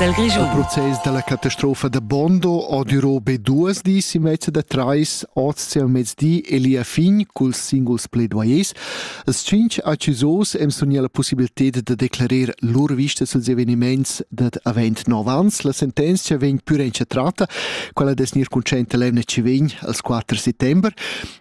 Il process dalla catastrofa da Bondo ha durò be duas dis e mezza da trais oz sil mezdi e lia fin culs singuls pledvoyers. Els tschintg accusos em sun la possibilità da declarer lur vista suls eveniments dad avent nov ans. La sentenzia vegn pur entschatrata, quella des nir concenta l'emna ci vegn als 4 settember.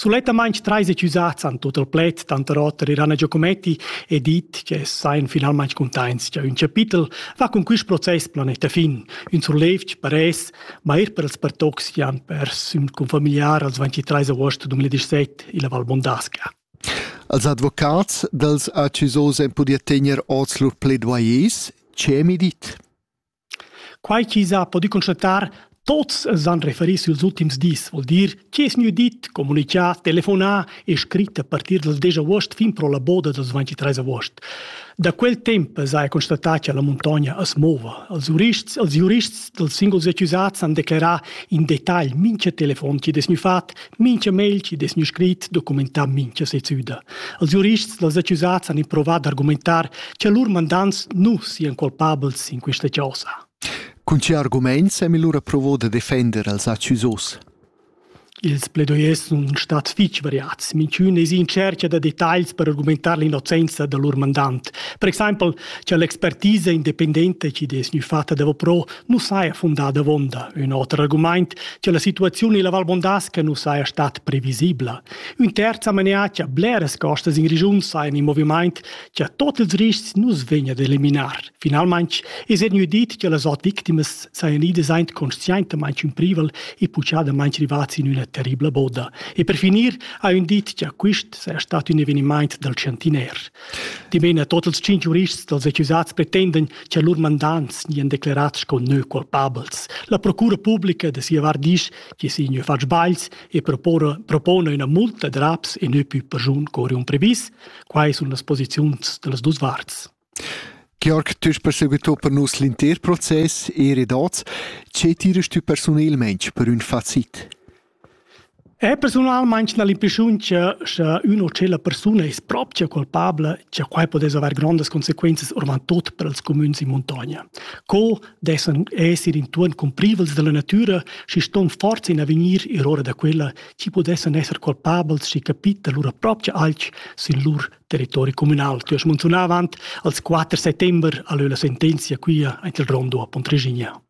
Sulettamain treis usats han tut il pled, tanter oter Irana Giocometti, e dit che sain finalmain cuntaints cha ün chapitel va cun quist process planeta fin, ün surlevg per es, ma eir per els pertocs chi han pers ün confamiliar als 23 agost 2017 illa Val Mondasca. Als advocats dals accusos en pudia tegner oz lur pledoyers, che mi dit? Quai chi s'ha pudü constatar, tuots s'han referi süls ultims dis, voul dir chi es gnü dit, comunichà, telefonà e scrit a partir dal desch avuost fin pro la boda dals 23 avuost. Da quel temp s'haja constatà cha la muntogna as mouva. Els jurists els giurists dals singuls accusats han declerà in detagl mincha telefon chi'd es gnü fat Mincha mail chi'd es gnü scrit documentà mincha sezüda. Els giurists dals accusats han improvat d'argumentar cha lur mandants nu sian culpabels in quista chosa. Cun che argumaints hem lura provo da defender els accusos? Ils pledoyers sun stats fich variats. Minchün es in tschercha da detagls per argumentar l'innocenza da lur mandant. Per exaimpel, cha l'expertisa independenta chi'd es gnü fatta davo pro nu saja fundà davonda ün oter argumaint cha la situaziun illa Val Bondasca nu saja stat previsibla. Ün terz amenà cha bleras costas in regiun sajan in movimaint cha tot ils riscs nu's vegna d'eliminar. Finalmaing es gnü dit cha las ot victimas sajan idas aint conscientamaing ün privel e puchadamaing rivats in üna terribla boda. E per finir ha ün dit cha quist saja stat ün evenimaint dal chantiner. Dimena tot ils cinc jurists dals accusats pretenden che lur mandants nian declerats sco neu culpabels. La procura publica de sia vart disch che si neu fatg sbails e propona una multa de raps e neu più persun cori un previs. Quai sun las posiziuns de las dus varts. Georg, tu perseguito per nus l'inter process e redats. Ce tirest tu personelmente per un facit? E persunalmaing na l'impreschiuncha scha ün o tschella persuna es propcha culpabla cha quai pudess avair grondas consequenzas oravant tuot per ils cumüns in muntogna. Co dessan esser intuorn cumprivels da la natüra, schi ston forza in avegnir eroura da quella chi pudessan esser culpabels schi capita lura propcha alch sün lur territori cumünal. Tü hast munzunà avant als 4 settember a lö la sentenzia quia aint il rondo a Pontreginia.